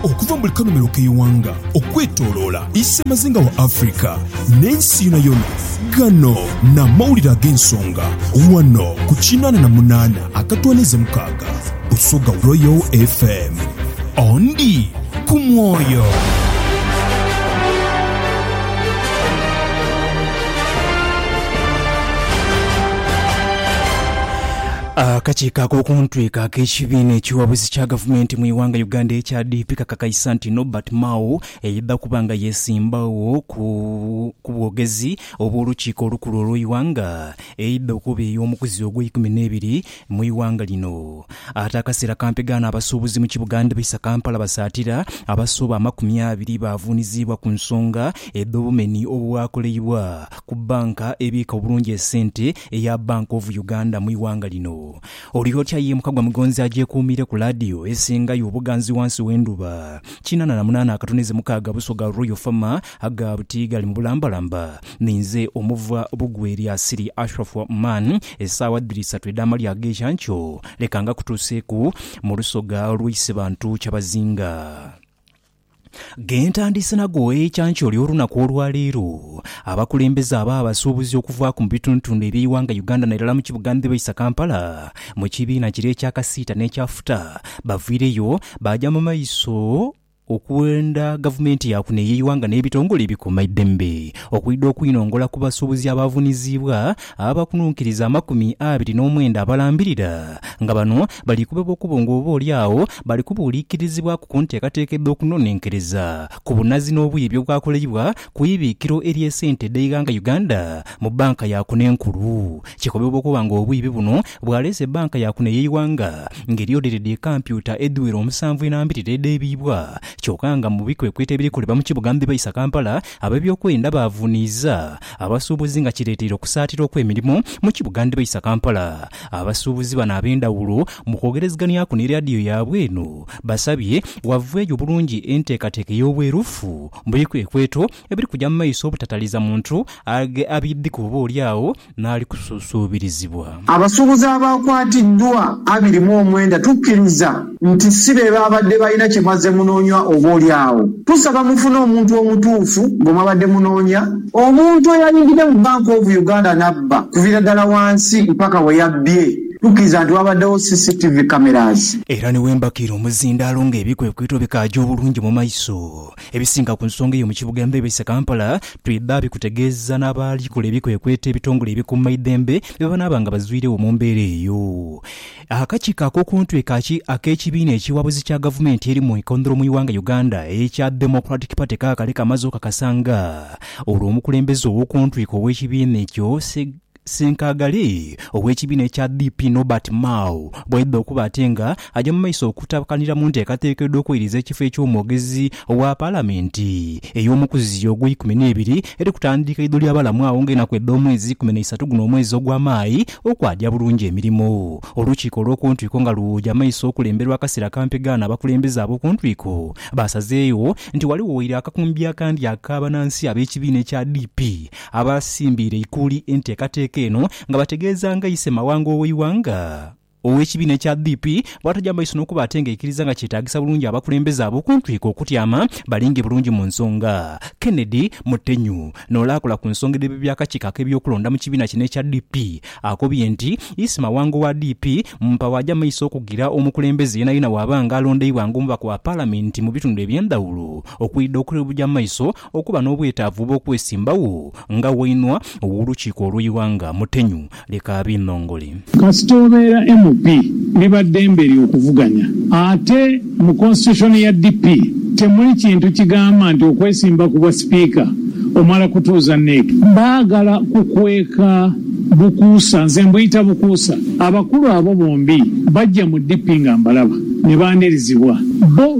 Okuva mu buli kanhomero k'eighanga okwetoloola isemazinga wa Africa n'ensi yonayona, ghano n'amawulire ag'ensonga ghano ku kinaana na munaana akatwaniiza mukaaga Busoga Royal FM. Ondi ku mwoyo. Akakiiko ak'okuntwiko ak'ekibiina ekiwabuzi kya gavumenti mu ighanga Uganda ekya DP kakakaisa nti Norbert Mao eidha kuba nga yesimbagho ku bwogezi obw'olukiiko olukulu olw'eighanga eidha okuba ey'omukuzi ogw'eikumi n'ebiri mu ighanga lino ate akaseera kampegaano abasuubuzi mu kibuga ndhibaisa Kampala basaatira abasoba amakumi abiri baavuuniziibwa ku nsonga edh'obumeni obwakoleibwa ku banka ebiika obulungi esente eya Bank of Uganda mu ighanga lino. Oli otya ye mukagwa mugonzi agyekuumiire ku laadiyo esingayo obuganzi wansi w'endhuba. Kinana na munaana akatoneze mukaaga buso ga Royal Fama aga buti gali mu bulambalamba. Ninze omuva Bugwe lya Siri Ashraf Oman, esaawa dhiri isatu edh'amalya ag'enkya nkyo. Leka ngakutuuseeku mu lusoga lw'Eisibantu Kyabazinga. Ghe ntandiise nago ekyankyoli olunaku olwa leero, abakulembeze abo abasuubuzi okuvaaku mu bitundutundu eby'eighanga Uganda nairala mu kibuga ndhibaisa Kampala mu kibiina kire ekya kasiita n'ekya futa bavwireyo baaja mu maiso okwenda gavumenti ya kuno ey'eighanga n'ebitongole ebikuuma eidembe okwidha okwinongola ku basuubuzi abaavuniziibwa Abakununkiriza amakumi abiri n'omwenda abalambirira nga bano bali kubebwa okubo nga oba oli agho bali kubuuliikirizibwaku ku nteekateeka edh'okunonenkereza ku bunazi n'obwiibi obwakoleibwa ku ibiikiro ery'esente edh'eighanga Uganda mu banka ya kuno enkulu. Kikobebwa okuba nga obwiibi buno bwaleese banka ya kuno ey'eighanga nga eryodheire dhi kampyuta edhiwera omusanvu enambirira edheebiibwa kyoka nga mu bikwekweto ebiri kolebwa mu kibuga Mbibaisa Kampala ab'ebyokwerinda baavuuniiza Abasuubuzi nga kireeteire okusaatira okw'emirimu mu kibuga ndhibaisa Kampala. Abasuubuzi bano ab'endhawulo mu kwogereziganyaku ni leadiyo yaabwe eno basabye wavweeyo bulungi enteekateeka ey'obwerufu mu bikwekweto ebiri kugya mu maiso obutataliza muntu abiidhiku oba olyagho n'ali kusuusuubirizibwa. Abasuubuzi abaakwatiddwa abiri mu omwenda tukkiriza nti si be baabadde balina kye mwazze munoonya oboolyawo tusaba mufune omuntu omutuufu gwe mwabadde munoonya. Omuntu eyayingidde mu Bank of Uganda n'abba okuviira ddala wansi mpaka we yabbye tukkiriza nti waabaddewo CCTV cameras. Era ne we mbakiira omuzindaalo ng'ebikwekweto bikaaja obulungi mu maiso, Ebisinga ku nsonga eyo mu kibuga embeebese Kampala twidha bikutegeeza n'abalikola ebikwekweto ebitongole ebikuumaidhembe bye banaaba nga bazwiregho mu mbeera eyo. Akakiiko ak'okuntwee kaki ak'ekibiina ekiwabuzi kya gavumenti eri mu ikondholo mu ighanga Uganda ekya Democratic Party kaakale kamaze okakasa nga olwo omukulembeze ow'okuntwiko ow'ekibiina ekyo Seg Ssenkaaga ghale ow'ekibiina ekya DP Norbert Mao bwaidha okuba ate nga aja mu maiso okutabakanira mu nteekateeka edh'okweiriza ekifo eky'omwogezi owa Palamenti ey'omukuziyo ogw'eikumi n'ebiri eri kutandiika idho lya balamu agho nga enaku edh'omwezi ikumi na isatu guno omwezi ogwa Mayi okwagya bulungi emirimo. Olukiiko olw'okuntwiko nga luja mu maiso okulemberwa akasira akampi ghano abakulembeze ab'okuntwiko baasazeegho nti ghaligho waire akakumbi akandi ak'abanansi ab'ekibiina ekya DP Abaasimbiire eikuuli enteekateeka eno nga bategeeza nga Ise Mawanga ow'eighanga ow'ekibiina ekya DP bw'ataja maiso n'okuba ate nga aikiriza nga kyetaagisa bulungi abakulembeze abo okuntwika okutyama balinge bulungi mu nsonga. Kennedy Mutenyu n'ole akola ku nsonga edh'ebyo by'akakiiko ak'ebyokulonda mu kibiina kino ekya DP akobye nti Ise Mawanga owa DP mumpa bw'aja maiso okugira omukulembeze yeenayena bw'aba nga alondeibwa ng'omubaka wa Palamenti mu bitundu eby'endhawulo okwidha okuja maiso Okuba n'obwetaavu obw'okwesimbagho nga wainua w'olukiiko olw'eighanga mutenyu, leka abinhongole. Kasita obeera MP, liba ddembe lyo okuvuganya. Ate mu Constitution ya DP, temuli kintu kigamba nti okwesimba ku bwa Sipiika omala kutuuza NEC. Baagala kukweka bukuusa. Nze mbuyita bukuusa. Abakulu abo bombi bajja mu DP nga mbalaba ne baanirizibwa. Bbo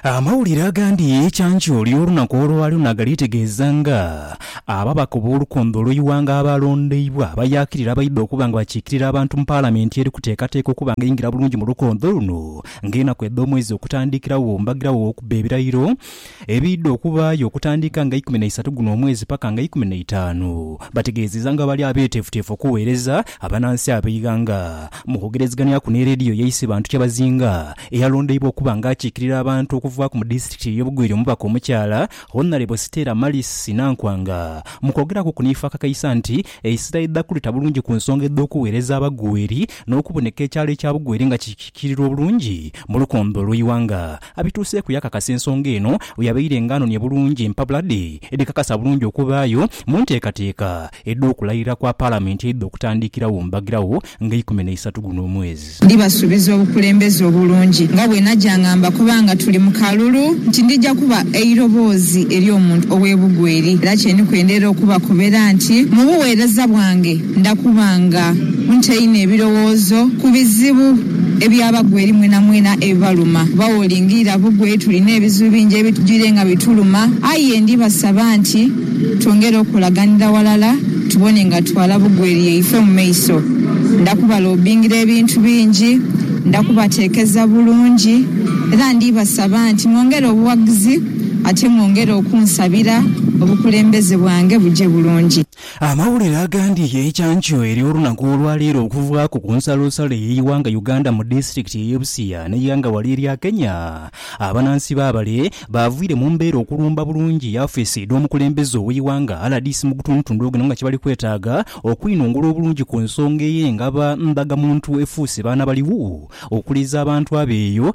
Amawulire agandi ye kyanjo ly'olunaku olwalyo naagaliitegeeza nga ababaka ob'olukombe olw'eighanga abaalondeibwa abayaakirira abaidha okuba nga bakiikirira abantu mu Palamenti eri kuteekateeka okuba nga eingira bulungi mu lukombe luno ng'enaku edh'omwezi okutandikiragho mbagiragho w'okubba ebirayiro ebiidha okubaayo okutandika nga ikumi naisatu guno omwezi paka nga ikumi naitaanu. Bategeezezza nga bwe bali abeeteefuteefu okuweereza abanansi ab'eighanga Mu kwogerezeghanhyaku ni leediyo yaise Bantu Kyabazinga eyalondeibwa okuba nga akiikirira abantu okuvaaku mu disitulikiti ey'obugwire omubaka omukyala Honalebo Stella Malice Nankwanga mu kwogeraku ku niifa akakaisa nti eisira idha kuleta bulungi ku nsonga edh'okuweereza abagweri n'okuboneka ekyalo ekya Bugweri nga kikiikirirwa obulungi mu lukombe olw'eighanga Abituuseeku yakakasa ensonga eno bweyabaire nga anonia bulungi empapula dhe edhikakasa bulungi okubaayo mu nteekateeka edh'okulayirira kwa Palamenti eidha okutandikirawo mbagirawo nga eikumi n'eisatu guno omwezi. Ndibasuubiza obukulembeze obulungi nga bwe naja nga mbakoba nga tuli mu kalulu nti ndija kuba eiroboozi ery'omuntu ow'ebugwa eri era kyeniku endeira okubakobera nti mu bugheereza bwange, Ndha kuba nga ntaine ebirowoozo ku bizibu ebyabagwa eri mwenamwena ebibaluma, kuba wolingirira bugwe tulina ebizibu bingi ebitwire nga bituluma. Aye ndibasaba nti twongere okukolaganira ghalala tubone nga tutwala bugwe eri yaife mu maiso. Ndha kubalobingira ebintu bingi, ndha kubateekeza bulungi, era ndibasaba nti mwongere obughagizi ate mwongere okunsabira obukulembeze bwange buje bulungi. Amawulire agandi yekyankyo eri olunaku olwaleero okuvaaku ku nsalosalo eyeighanga Uganda mu disitulikiti eye Busia neighanga wale erya Kenya abanansi babale bavwire mu mbeera okulumba bulungi yafeesi edhomukulembeze oweighanga rdc mugutundutundu guno nga kyebali kwetaaga okwinungula obulungi ku nsonga eye ngaba ndhaga muntu efuuse baana baliwo okuliiza abantu abeeyo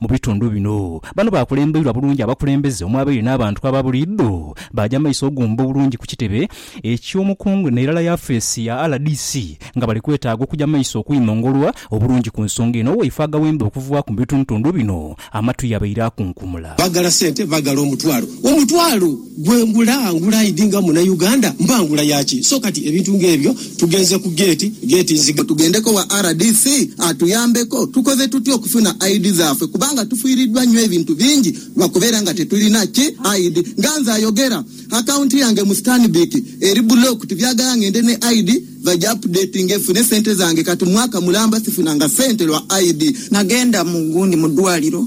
Mu bitundu bino, bano baakulembeirwa bulungi abakulembeze omwabaire n'abantu aba buliidho. Baaja mu maiso oguumba obulungi ku kitebe eky'omukungu n'erala yafeesi ya rdc nga bali kwetaaga okuja mu maiso okwimongolwa obulungi ku nsonga eno waifo agawemba okuvaaku mu bitundutundu bino amatu yabaire akunkumula. Bagala sente bagala omutwalo omutwalo. Gwe ngula ngula idi nga muna Uganda mba ngula yaki so kati ebintu nga ebyo tugenze ku gate gate nzige. Tugendeko wa rdc atuyambeko tukoze tutya okufuna I'd dhafe kubanga tufiridwa nyo ebintu bingi lwakubera nga tetulina ki I'd nga nze ayogera account yange mu stanbic eri blocked byagala ngende ne I'd bagi updatinge fune sente zange kati mwaka mulamba sifunanga sente lwa I'd. Nagenda mu gundi mudwaliro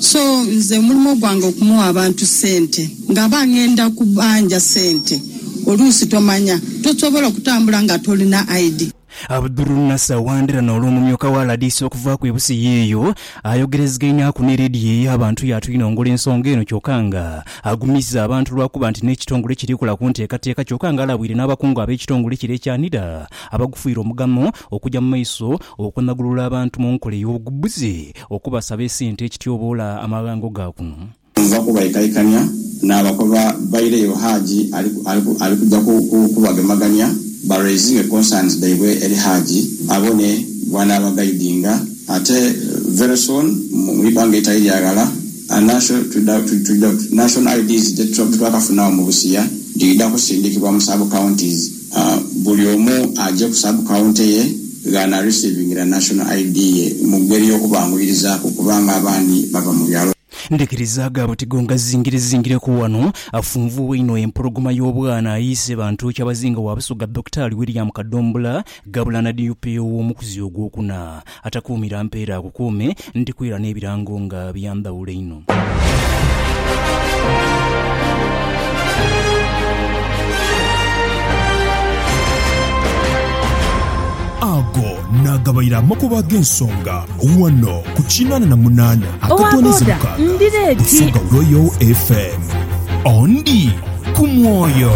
So nze omulimo gwange okumugha abantu sente nga aba ngenda kubanja sente oluusi tomanya tosobola okutambula nga tolina ID. Abdulnasser Wandera n'ole omumyuka wa rdc okuvaaku e Busia eyo ayogerezegaineaku ne leediyo eyo abantu yaatwinongola ensonga eno kyoka nga agumizza abantu lwakuba nti n'ekitongole kiri kola ku nteekateeka kyoka nga alabwire n'abakungu ab'ekitongole kino ekya NIDA abagufuire omugamo Okuja mu maiso okunagulula abantu mu nkola ey'obugbuzi okubasaba esente ekityoboola amaghango ga kuno. Nva kubaikaikania n'abakoba baire yo Haji ali kuja kubagemagania ba raisinge concerns dhaibwe eri Haji abone bwanaaba guidinga ate very soon mu ibanga eritali lya ghala National IDs dhetwakafunagho mu busiya dhidha kusindikibwa mu sub counties. Buli omu aje ku sub county ye ghana receivingira National ID ye mu geri y'okubanguyirizaku kubanga abandi bava mu byalo. Ndhikiriza agabo tigongazingirezingireku wano. Afunvuuwa einho empologoma y'obwana ayiise Bantu Kyabazinga wa Busoga Dokitaali William Kadombula ghabula na DUP ow'omukuzi ogwokuna. Atakuumira mpeera akukuume, ndikuira n'ebirango nga bya ndhawulo einho. Ago naagabaire amakubo ag'ensonga ghano ku kinaana na munaana akatono ezo mukaaga Busoga Royal FM. Ondi ku mwoyo.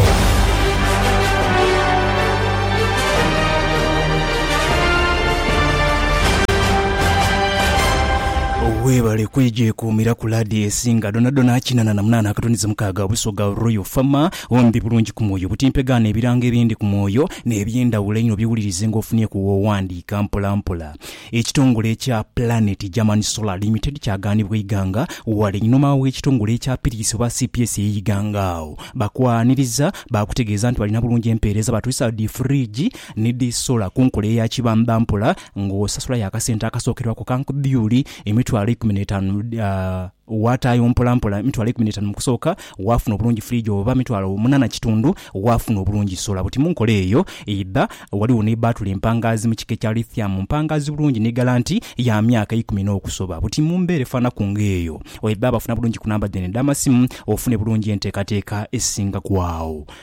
Weebale kwegyekuumiraku laadiyo esinga dhonadhona kinana na munaana akatundize mukaaga Busoga Royal Fama. Ombi bulungi ku mwoyo, butimpegaano ebirango ebindi ku mwoyo n'ebyendhawulo einho bye wulirize nga ofunyeku w'owandiika mpola mpola. Ekitongole ekya Planet German Solar Limited kyagaanibwa eighanga wala einhuma w'ekitongole ekya Piris oba cps ey'eighanga agho bakwaniriza baakutegeeza nti balina bulungi empeereza baatwisa dhi fridge Ni dhi sola ku nkola eya kibamba mpola nga osasulayo akasente akasookerwaku ka nkdhyuli emitwalo eikumi n'etaanu, waataayo mpolampola emitwalo eikumi n'etaanu mu kusooka, waafuna obulungi firiigi oba mitwalo munaana kitundu, waafuna obulungi sola buti. Mu nkola eyo eidha, ghaligho ni bbaatule empangaazi mu kika ekya Lithium, mpangaazi bulungi ni galanti ya myaka eikumi n'okusoba buti. Mu mbeera efaanaku ng'eyo, oidha bafuna bulungi ku namba dhaino edh'amasimu ofune bulungi enteekateeka esingaku agho.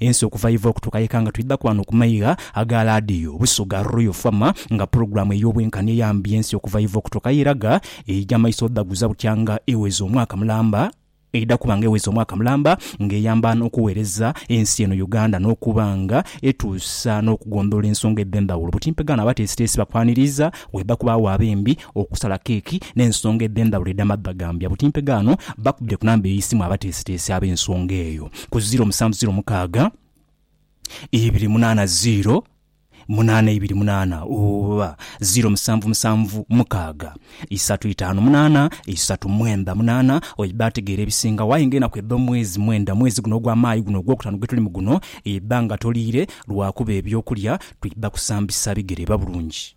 Ensi okuva yeva okutuuka yeka nga twidhaku ghano ku maigha aga laadiyo Busoga Royal FM nga pulogulaamu ey'obwenkani eyambye ensi okuva yeva okutuuka yeraga eija maiso odhaguza butyanga eweza omwaka mulamba eidha kuba nga eweza omwaka mulamba nga eyamba n'okuweereza ensi eno Uganda n'okuba nga etuusa n'okugondhoola ensonga edh'endhawulo. Butimpegano abateesiteesi bakwaniriiza, waidha kubaagho ab'embi okusala keeki n'ensonga edh'endhawulo edh'amadha gambya buti mpe gaano bakubire ku namba ey'eisimu abateesiteesi ab'ensonga eyo ku ziiro musanvu ziiro mukaaga ibiri munaana ziiro munaana ibiri munaana oba ziiro musanvu musanvu mukaaga isatu itaanu munaana isatu mwendha munaana oidha ategeera ebisingawo aye nga enaku edh'omwezi mwendha mwezi guno ogwa Maayi guno ogwokutaano gwetulimu guno idha nga toliire lwakuba eby'okulya twidha kusambisa bigere biba bulungi.